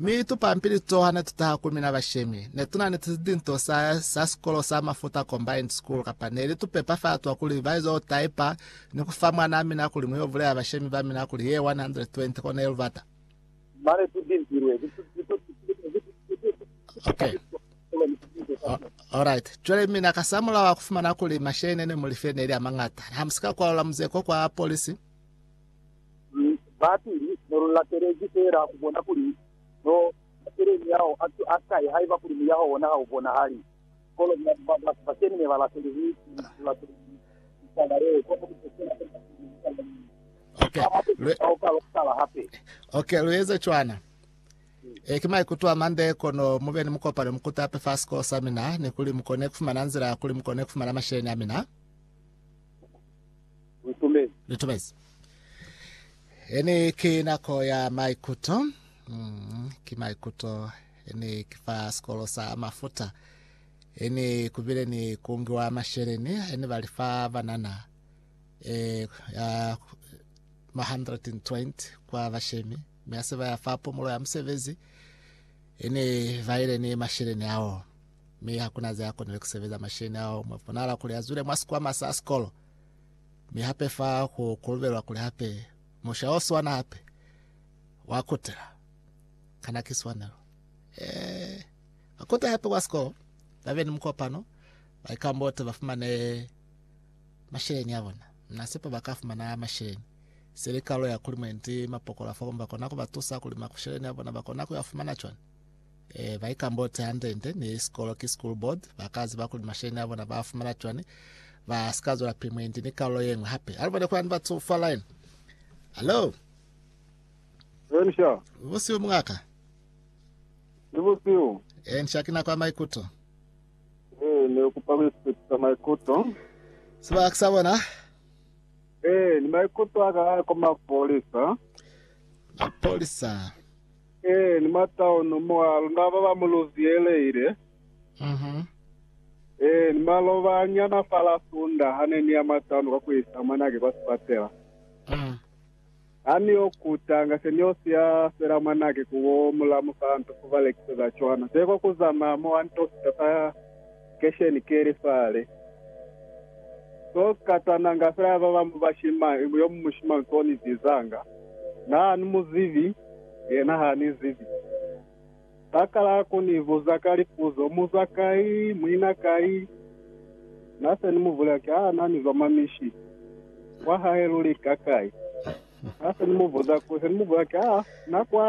Mi tupampili to hane tutaha ku mina bashemi, netunani silinto sa sa sikolo sa Mafuta Combined School kapa neli tupepa fa twa kuli baizo taipa ni kufa mwanaa mina kuli muyo bulea bashemi ba mina kuli ye 120 kona ye lubata. Mane tu bimpilwe ku Okay. Alright. Cwale mina ka samula wa kufumana kuli mashene ne mulife neli amangata. Hamusika kwalula muzeko kwa polisi. Mi bapili ne lu latelezi feela ku bona kuli no batele miyaho a ki a kai haiba kuli muyaho wona ha u bonahali. Kono batu ba keni ne ba latelezi ku latela litaba leo, kono ku se kena talimani ya litaba leo. Ok, Ba hape lu, ba oka lwa ku tala hape. ok, lu eze cwana. E, ki maikuto a mande, kono mu be ni mukopano mu kutape fa sikolo sa mina, ni kuli mu kone ku fumana nzila ya kuli mu kone ku fumana masheleñi a mina. Ntumezi. Ntumezi. Hene ki nako ya maikuto. Mm, ki maikuto. Hene ki fa sikolo sa mafuta. Hene kubile ni kungiwa masheleni. Hene bali fa banana. E, ya, ma 120 kwa bashemi. Me ase ba ya fa pumulo ya musebezi. Hene ba ile ni masheleni ao. Me hakuna ze akonile kusebeza masheleni ao. Mwaponala kuli azwile mwa sikwama sa sikolo. Mi hape fa ku kolobelwa kuli hape musha o swana hape wa kutela. Kana ki swanelo? Eh, ba kute hape kwa sikolo, ba be ni mukopano, ba ikambote, ba fumane masheleni a bona. Na sepa ba ka fumana masheleni. Se li kalulo ya kuli mwendi mapokola fa komba kona ku ba tusa kuli makusheleni a bona ba kona ku ya fumana cwani. E, ba ikambotse hande-nde ni sikolo ki school board, ba ka ziba kuli masheni a bona ba a fumana cwani, ba si ka zwela pili mwendi ni kalulo ye ñwi hape. A lu bone kuli ani ba tsufa line. Hello, Elisha, busihu mungaka. ni busiu. E, nsha ki nako ya maikuto. Eh, ne kupa ku iphetisa maikuto. Sebaka ki sa bona, Eh, ni maikuto a ka a koma polisa. mapolisa. Ee, ni mataunu mwa luna ba ba mu luzieleile. Ee, ni maloba a nyana fa la Sunda ha ne ni ya mataunu kwa ku isa mwanake kwa sipatela. Ha ni yo kutanga, se ni yo siya fela mwanake ku bo mulamu fa nto fo ba lekiseza cwana. Se kwa ku zamaya mo, a nto fita fa kesheni keli fale. To katananga fela ba bamu bashimang, yo mu mushimang to ni bizanga, Na ni mu zibi, yena ha ni zibi. Ba kala ku ni buza ka lipuzo, Mu zwa kai? Mu ina kai? Na se ni mu bulela ki, Aa, na ni zwa mwa mishi. Kwa hae luli ka kai? Na se ni mu buza ku, se ni mu bulela ki, Aa, na kwa.